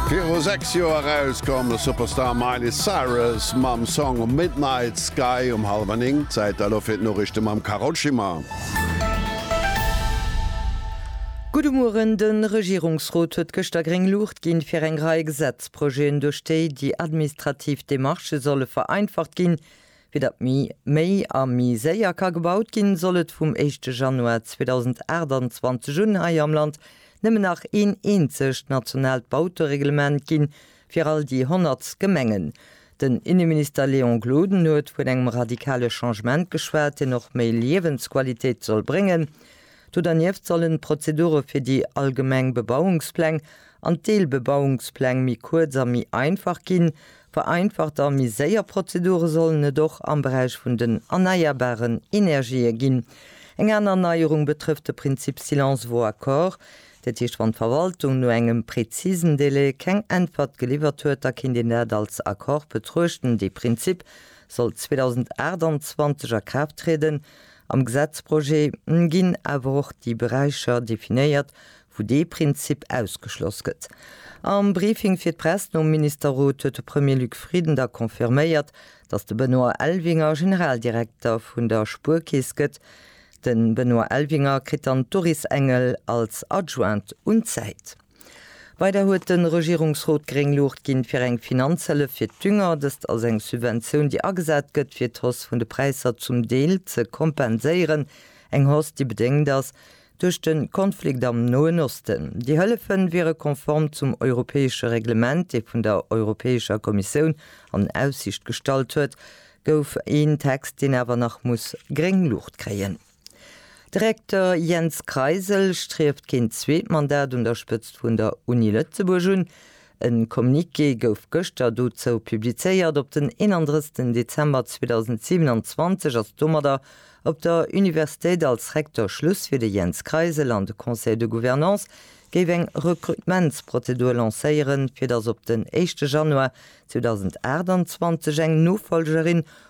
Viru 6 Joer erauskomm ass Superstar Miley Cyrus mam Song Midnight Sky um hallwer 9. Zäit da lo fir d'Noriichte mam Carole Schimmer. Gudde Mueren, De Regierungsrot huet gëschter gréng Luucht ginn, fir eng Rei Gesetzprojeten, duerch déi déi administrativ Demarchë solle vereinfacht ginn, Fir datt méi, méi a méi séier ka gebaut ginn, soll et vum éischte Januar 2028 un hei am Land nëmmen nach een eenzegt nationaalt Bautereglement ginn, fir all déi 100 Gemengen. Den Inneminister Léon Gloden huet vun engem radikale Changement geschwat, deen och méi Liewensqualitéit soll bréngen. Do dernieft sollen d'Prozedure fir déi allgemeng Bebauungspläng an d'Deelbebauungspläng méi kuerz a méi einfach ginn. Vereinfacht a méi séier Prozedure sollen et och am Beräich vun den erneierbaren Energië ginn. Eng aner Neierung betrëfft de Prinzip Silence vaut accord. Dat heescht, wann d'Verwaltung no engem prezisen Délai keng Äntwert geliwwert huet, da kéint een dat als Accord betruechten. Dee Prinzip soll 2028 a Kraaft trieden. Am Gesetzprojet ginn awer och déi Beräicher definéiert, wou dee Prinzip ausgeschloss gëtt. Am Briefing fir d'Press nom Ministerrot huet de Premier Luc Frieden da confirméiert, datt de Benoît Elvinger Generaldirekter vun der Spuerkeess gëtt. De Benoît Elvinger kritt dann d'Doris Engel als Adjointe un d'Säit. Weider huet de Regierungsrot gréng Luucht ginn, fir eng Finanzhëllef fir d'Dünger, dëst ass eng Subventioun, déi agesat gëtt, fir d'Hausse vun de Präisser zum Deel ze kompenséieren, eng Hausse, déi bedéngt ass duerch de Konflikt am Noen Osten. Déi Hëllefe wiere konform zum europäesche Reglement, dee vun der Europäescher Kommissioun an Aussicht gestallt huet gouf, een Text, deen awer nach muss gréng Luucht kréien. De Recteur Jens Kreisel strieft keen zweet Mandat un der Spëtzt vun der Uni Lëtzebuerg un. E Communiqué gouf gëschter dozou publizéiert. Op den 31 Dezember 2027 ass domadder op der Universitéit als Recteur Schluss fir de Jens Kreisel an de Conseil de Gouvernance géif eng Recrutementsprozedur lancéieren, fir datt op den éischte Januar 2028 eng Nofolgerin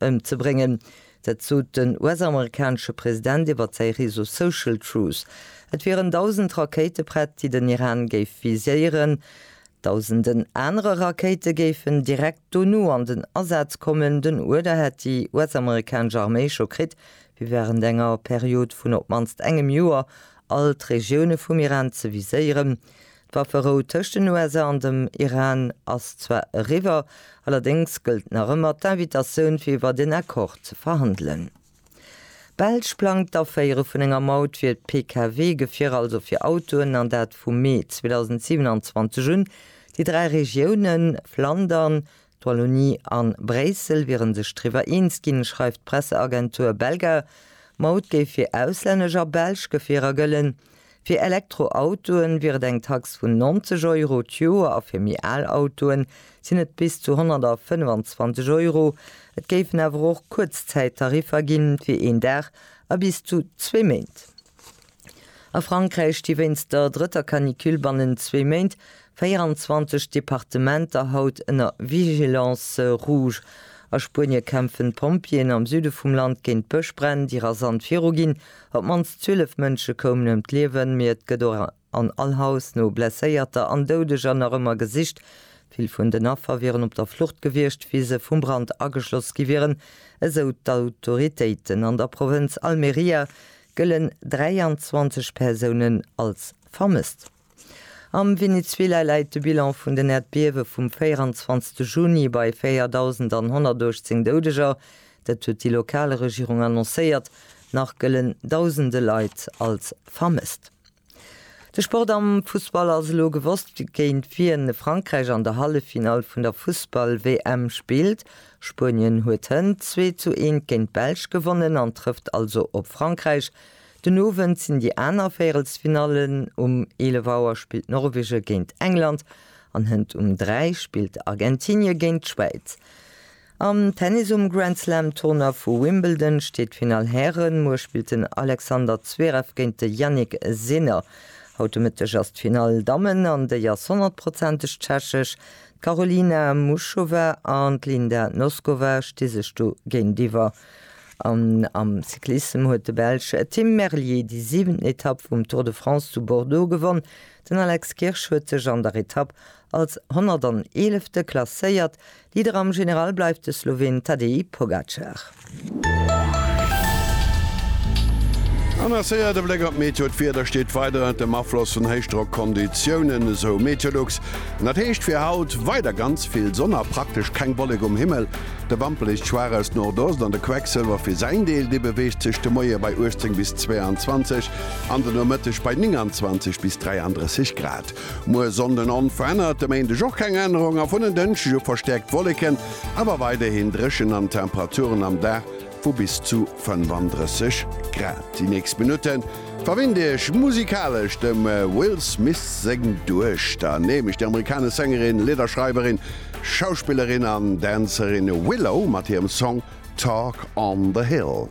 Ëmzebréngen. Dat sot den US-amerikanesche President iwwer säi Réseau Social Truth. Et wieren 1.000 Rakéite prett, déi den Iran géif viséieren. Dausenden anere Rakéite géifen direkt dono an den Asaz kommen. Den Uerder hätt déi US-amerikanesch Arméi scho kritt, fir wärend enger Period vun op d'mannst engem Joer all d'Regioune vum Iran ze viséieren. D'Wafferou tëscht den USA an dem Iran ass zwar eriwwer, allerdéngs gëllt nach ëmmer d'Invitatioun fir iwwert een Accord ze verhandelen. D'Belsch plangt d'Aféiere vun enger Maut fir d'Pkw-Gefierer, also fir Autoen, an dat vu Mee 2027 un. Déi dräi Regiounen, Flandern, D'Wallonie an Bréissel wieren sech driwwer eens ginn, schreift d'Presseagentur Belga. D'Maut géif fir auslännesch a belsch Gefierer gëllen. Fir Elektroautoen wier et eng Tax vun 90 Euro d'Joer a fir méi al Autoen sinn et bis zu 125 Euro. Et géifen awer och Kuerzzäittariffer ginn, fir een Dag a bis zu zwee Méint. A Frankräich sti wéinst der drëtter Canicule bannent zwee Méint 24 Departementer haut ënner Vigilance rouge. A Spuenie kämpfen d'Pompjeeën am Süde vum Land géint Bëschbränn, déi rasant viruginn. Op d'mannst 12 Mënsche koumen ëm d'Liewen, mee et gëtt och an all Haus no Blesséierter an Doudeger nach ëmmer gesicht. Vill vun den Affer wieren op der Flucht gewiescht, wéi se vum Brand ageschloss gi wieren, esou d'Autoritéiten an der Provënz Almeria. gëllen 23 Persounen als vermësst. Am Venezuela läit de Bilan vun den Äerdbiewe vum 24 Juni bei 4.118 Doudeger, dat huet déi lokal Regierung annoncéiert. Nach gëllen dausende Leit als vermësst. De Sport am Fussball ass elo gewosst, géint wien Frankräich an der Halleffinall vun der Fussball-WM spillt. Spuenien huet hënt zwee zu eent géint d'Belsch gewonnen an trëfft also op Frankräich. Den Owend sinn déi aner Véierelsfinallen, um 11 Auer spillt Norwege géint England an hënt um 3 spillt Argentinie géint d'Schwäiz. Am Tennis um Grand Slam Tournoi vu Wimbledon steet d'Finall Hären. Muer spillt den Alexander Zverev géint de Jannik Sinner. Haut de Mëtteg ass d'Finall Dammen an déi ass honnertprozenteg tschechesch. D'Karolina Muchova an d'Linda Noskova sti sech do géintiwwer. An am Cyclissem huet de Belsch Tim Merlier déi siwenten Etapp vum Tour de France zu Bordeaux gewonn. Den Alex Kirsch huet sech an der Etapp als 111. klasséiert. Leader am General bleift de Sloween Tadej Pogacar. An a séier de Bléck op d'Meteo. D'Wieder steet weider ënnert dem Afloss vun Héichdrockkonditiounen, esou Meteolux. An dat heescht fir haut weider ganz vill Sonn a praktesch keng Wollek um Himmel. De Wamperliicht schwaach aus Nordost an de Quecksëlwer fir säin Deel, dee beweegt sech de Moie bei 18 bis 22 an den Nomëtteg bei 29 bis 33 Grad. Muer Sonnden onverännert, de Méindeg och keng Ännerung a vun en Dënschdeg u verstäerkt Wolleken, awer weiderhin dréchen an Temperaturen am Dag vu bis zu 35 Grad. Déi nächst Minutte verwinnt Iech musikalesch dem Will Smith seng Duechter, nämlech déi amerikanesch Sängerin, Lidderschreiwerin, Schauspillerin an Dänzerin Willow mat hirem Song Talk on the Hill.